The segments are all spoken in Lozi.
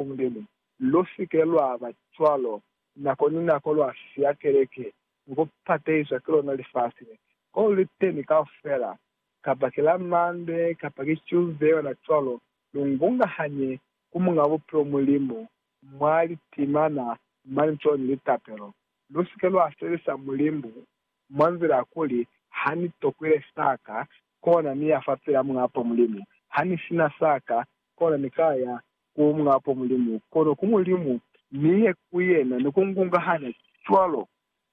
ku Mulimu. Lu si ke lwa ba cwalo. Nako ni nako lwa siya keleke ni ku pateiswa ki lona lifasi le, ko lu li teni kaufela, kapa ki la Mande kapa ki Tuesday ona cwalo, lu ngungahanye ku Muñ'a Bupilo Mulimu mwa litimana mane cwalo ni litapelo. Lu si ke lwa sebelisa Mulimu mwa nzila ya kuli, Ha ni tokwile sa ka, kona ni ya fapil'a Muñ'a Apo Mulimu. Ha ni si na sa ka, kona ni ka ya Ku mwa po Mulimu, kono ku Mulimu, mi he ku yena, ni ku ngungahana cwalo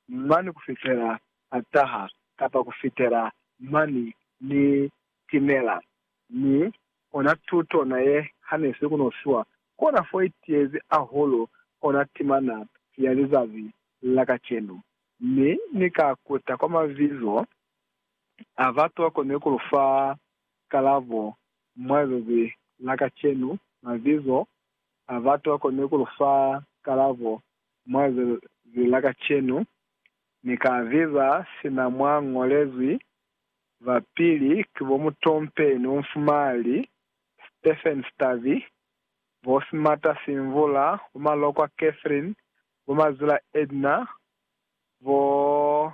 mani ku fitela a taha, kapa ku fitela mani ni timela. Mi ona tuto na ye hanisi ku no fiwa, kona fo i tiyezi ahulu ona timana ya lizazi la kacenu. Mi ni ka kuta kwa mabizo a batu ba koni ku lu fa Kalabo, Mwa lilubi la kacenu, mabizo a batu a koni ku lu fa kalabo mwa lilubi la kacenu. Ni ka abiza sina mwa ñolezwi. Ba pili ki bo Mutompeni Umfumali, Stephen Stavi, bo Simata Simvula, bo Malokwa Catherine, bo Mazila Edna, bo.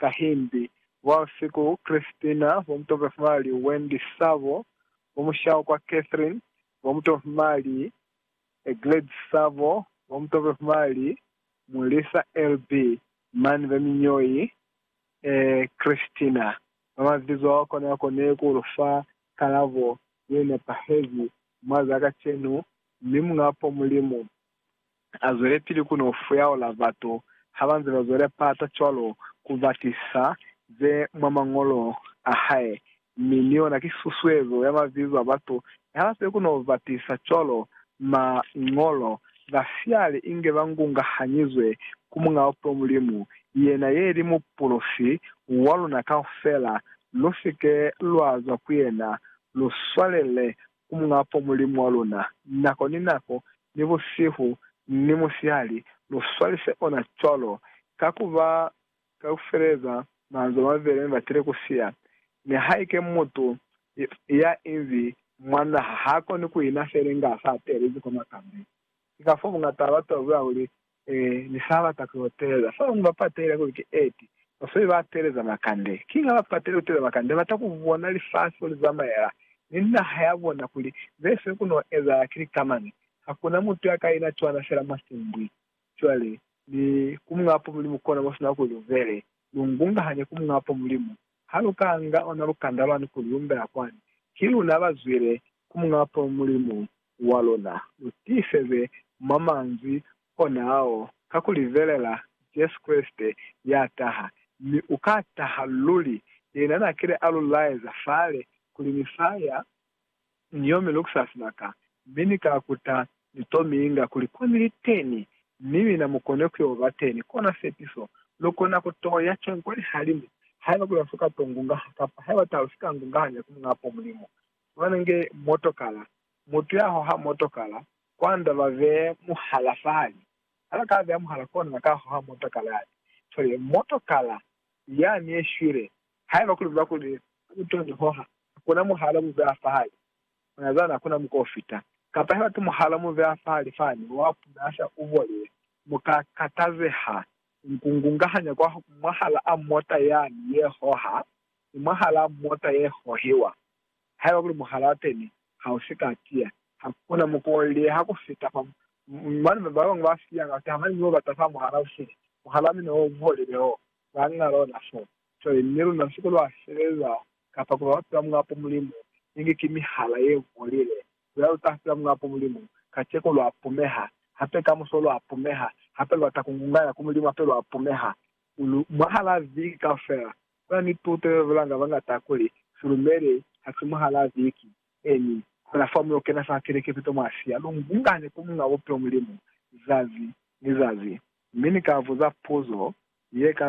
Kahimbi, ba si ku Christina, bo mutomhimali Wendy Sabo, bo mushaho kwa Catherine, bo mutomhimali Gladys Sabo, bo mutomhimali Mulisa LB. mani ba miñoi e Christina ba mabizo ao kona ya kone ku lu fa kalabo ye nepahezi mwa za kacenu, mi Muñ'a po Mulimu A zwelepili ku no fuyaula batu ha ba nze ba zwela pata cwalo ku ba tisa ze mwa Mañolo a hae, mi ni yona ki susuezo ya mabizo a batu ne ha ba sibe ku no ba tisa cwalo. Mañolo ba siyali inge ba ngungahanyizwe ku Muñ'a Bupilo Mulimu, yena ye li Mupulosi wa luna kaufela. Lu si ke lwa zwa ku yena, lu swalele ku Muñ'a Fo Mulimu wa luna, nako ni nako, ni busihu ni musihali, lu swalise ona cwalo, ka ku ba ka ku feleza manzwi a mabeli mi batile ku siya. Nihaike mutu ya inzi mwa naha ha koni ku ina feli nga sa telezi kwa makambi, ki ka fo bungata ba batu ba buya kuli, Ni ni sa bata ku yo teeleza. Fa bañwi ba patehile kuli ki eti, basweli ba teeleza makande. Kiña ba patehile ku teeleza makande? Ba bata ku bona lifasi mo li zamaela, ni naha ya bona kuli ze fe ku no ezahala ki lika mañi. Ha ku na mutu ya ka ina cwana fela mwa simbwi. Cwale, ni ku muñapo Mulimu kona mo sina kuli lu bele, lu ngungahanye ku muñapo Mulimu, Ha lu ka nga ona lukanda lwani kuli lu mbela kwani, ki luna ba zwile ku Muñ'a Bapalo Mulimu wa luna. Lu tiiseze mwa manzwi ona ao ka ku libelela Jesu Kreste ya taha, mi u ka taha luli. Yena n'a kile a lu laeza fale kuli ni sa ya. Ni yomi lukusa sibaka, mi Ni ka kuta ni to mi inga kuli ko Ni li teni, mi mina mu kone ku yo ba teni. Kona sepiso. Lu kona ku to ya cwañi kwa lihalimu, haiba kuli ha si ka to ngungaha, kapa haiba taha lu si ka ngungahanya ku Muñaa po Mulimu? Fumana nge motokala. Mutu ya hoha motokala, kwa nda ba be mu hala fahali. Ha ba ka beya muhala kona ba ka hoha motokala yale. Cwale, motokala Ni ya ni ye shwile, haiba kuli buba kuli u to ni hoha, hakuna muhala mu beha fahali ona zani, hakuna muko u fita. Kapa haiba ki muhala mu beha fahali fani, wa puna asha u bolile, mu ka katazeha. Ni ku ngungahanya kwa mwahalaa mota yani ye hoha, ni mwahalaa mota ye hohiwa, Haiba kuli muhalaa teni ha u si ka tiya, ha ku na mukolile ha ku fita fa mo. Mane ba bañwi ba siya ka ku taha mane mi ba bata fa muhalaa u sili, muhalaa mina o buholile o ba nga lona foo. Cwale ni luna, siku lwa sebeza kapa ku ba bapila mwa po Mulimu, inge ki mihala ye buholile, luna lu ta pila mwa po Mulimu. Kaceko lwa pumeha, hape kamuso lwa pumeha, hape lu bata ku ngunganya ku Mulimu, hape lwa pumeha mwahalaa viki kaufela. Kuna ni puto ye bulanga bañata kuli Fulumele ha si muhalaa Viki, emi fela fa muyo kena fa keleke pito mwa siya lu ngungane ku Muñ'a Bupilo Mulimu zazi ni zazi. Mi ni ka buza puzo ye ka